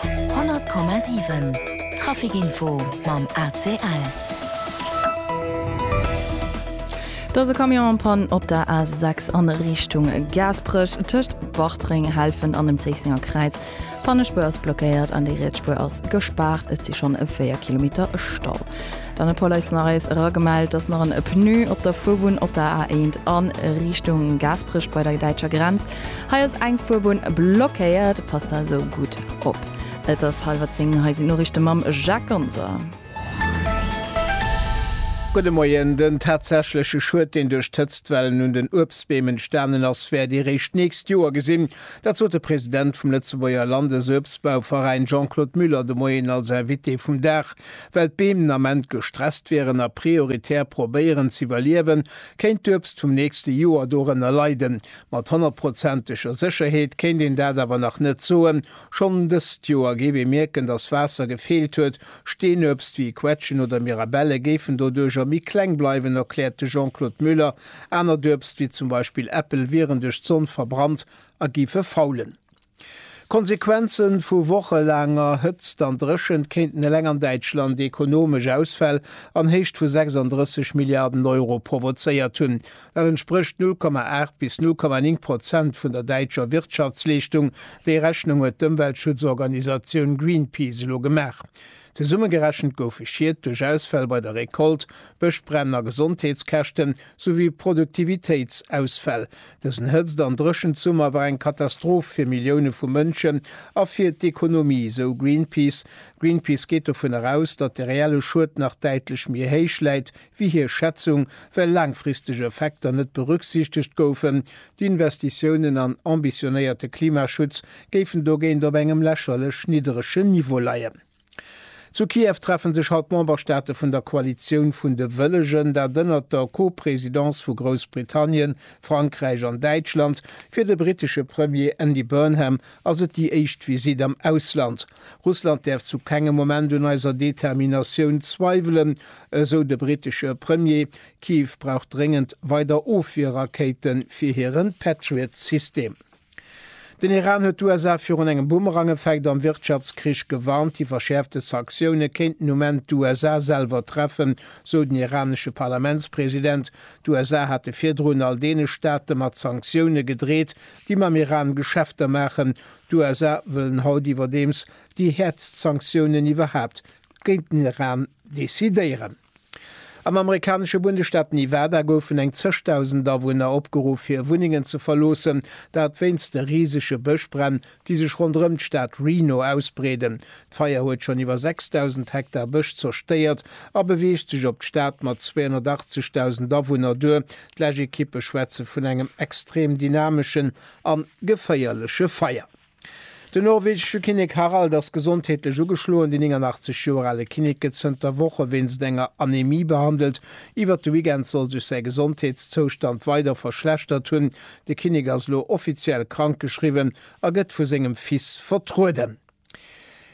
100,7 Traficinfo mam ACL. Et ass e Camion an Pann op der A 6 an Richtung Gaasperech tëscht Bartreng, Helfen an dem Zéissenger Kräiz. D'Pannespuer ass blockéiert an déi riets Spuer ass gespaart. Et si schonn 4 Kilometer Stau. Dann huet d'Police nach eis eragemellt, dass nach en Pneu op der Fuerbunn op der A 1 a Richtung Gaasperech bei der däitscher Grenz Hei ass eng Fuerbunn blockéiert, passt also gutt op. Et ass hallwer 10, hei sinn d'Noriichte mam Jacques Gonser. Gudde Moien, den tatsächleche Schued, deen duerch d'Hëtztwellen un den Uebstbeem entstanen ass, wäert ee réischt d'nächst Joer gesinn. Dat sot de President vum Lëtzebuerger Landesuebstbauveräin Jean-Claude Muller de Moien als Invité vum Dag. Well d'Beem den Ament gestresst wieren a prioritär probéieren z'iwwerliewen, kéint d'Uebst vum nächste Joer dorënner leiden. Mat honnertprozenteger Sécherheet kéint een dat awer nach net soen. Schonn dëst Joer géif ee mierken, datt Waasser gefeelt huet. Steenuebst wéi Quetschen oder Mirabelle géifen doduercher méi kleng bleiwen, erkläert de Jean-Claude Muller. Anert Uebst wéi zum Beispill Äppel wieren duerch d'Sonn verbrannt a géife faulen. D'Konsequenze vu wochelaanger Hëtzt an Dréchent kéinten eleng an Däitschland ekonomesch Ausfäll an Héicht vu 36 Milliarden Euro provozéiert hunn. Dat entsprécht 0,8 bis 0,9 Prozent vun der däitscher Wirtschaftsleeschtung. Déi Rechnung huet d'Ëmweltschutzorganisatioun Greenpeace elo gemaach. Zesummegerechent goufe Schied duerch Ausfäll bei der Recolte, Bëschbränn a Gesondheetskäschten, souwéi Produktivitéitsausfäll, Dësen Hëtzt an Dréchensummer war eng Katastroph fir Millioune vu Mënschen a fir d'Ekonomie, esou Greenpeace. Greenpeace geet dovun eraus, datt de reelle Schued nach däitlech méi héich läit wéi hir Schätzung, well laangfristeg Effekter net berücksichtegt goufen. D'Investitiounen an ambitionéierte Klimaschutz géifen dogéint op engem lächerlech nidderege Niveau leien. Zu Kiew treffe sech haut d'Memberstaate vun der Koalitioun vun de Wëllegen, dat ënnert der Co-Presidence vu Groussbritannien, Frankräich an Däitschland. Fir de brittesche Premier Andy Burnham ass et déi éischt Visitt am Ausland. Russland däerf zu kengem Moment un eiser Determinatioun zweiwelen, esou de brittesche Premier. Kiew brauch dréngend weider Ofwierrakéite fir hiren Patriot-System. Den Iran huet d'USA virun engem Boomerangeffekt am Wirtschaftskrich gewarnt. Déi verschäerfte Sanktioune kéinten um Enn d'USA selwer treffen, sou den iranesche Parlamentspresident. D'USA hate virdrun all deene Staate mat Sanktioune gedreet, déi mam Iran Geschäfter maachen. D'USA wëllen haut iwwerdeems déi häertst Sanktiounen iwwerhaapt géint den Iran decidéieren. Am amerikanesche Bundesstaat Nevada goufen eng zëschdausend Awunner opgeruff, fir hir Wunnengen ze verloossen, dat wéinst de risege Bëschbränn, déi sech ronderëm d'Stad Reno ausbreeden. D'Feier huet schonn iwwer 6.000 Hektar Bësch zerstéiert a beweegt sech op d'Stad mat 280.000 Awunner duer. D'Läschekippe schwätze vun engem extrem dynameschen a geféierleche Feier. Den norwegesche Kinnek Harald ass gesondheetlech ugeschloen. Deen 89 Joer ale Kinnek gëtt zënter Woche wéinst enger Anemie behandelt. Iwwert de Weekend soll sech säi Gesondheetszoustand weider verschlechtert hunn. De Kinnek ass elo offiziell krankgeschriwwen a gëtt vu sengem Fils vertrueden.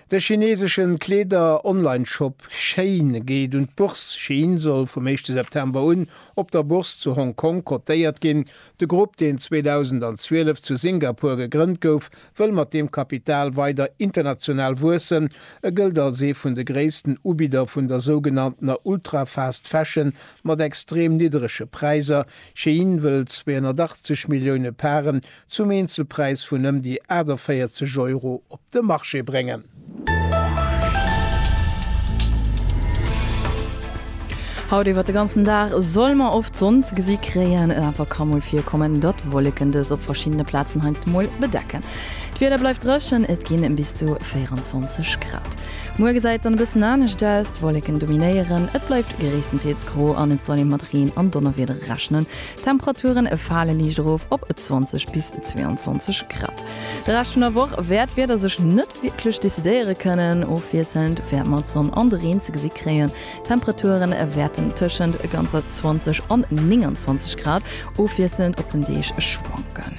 De chineesesche Kleeder-Online-Shop Shein geet un d'Bourse. Shein soll vum éischte September un op der Bourse zu Hong Kong cotéiert ginn. De Grupp, deen 2012 zu Singapur gegrënnt gouf, wëll mat deem Kapital weider international wuessen. E gëllt als ee vun de gréissten Ubidder vun der sougenanntener Ultra-Fast Fashion mat extrem niddrege Präiser. Shein wëll 280 Millioune Paren zum Eenzelpräis vun ëm déi 48 Euro op de Marché bréngen. Haut iwwert de ganzen Dag soll mer oft Sonn ze gesi kréien, et awer ka mol virkommen, datt Wolleken dës op verschiddene Plazen heiansdo mol bedecken. D'Wieder bleift dréchen, et ginn bis zu 24 Grad. Muer gesäit et dann e bëssen anescht aus, d'Wolleken dominéieren, et bleift gréisstendeels gro an et soll ee mat Reen an Donnerwieder rechnen. D'Temperaturen fale liicht erof op 20 bis 22 Grad. De Rescht vun der Woch wäert d'Wieder sech net wierklech decidéiere kënnen. Ofwiesselnd wäert mer d'Sonn an de Reen ze gesi kréien. D'Temperaturen wäerten tëschent ganzer 20 an 29 Grad ofwiesselnd op den Deeg schwanken.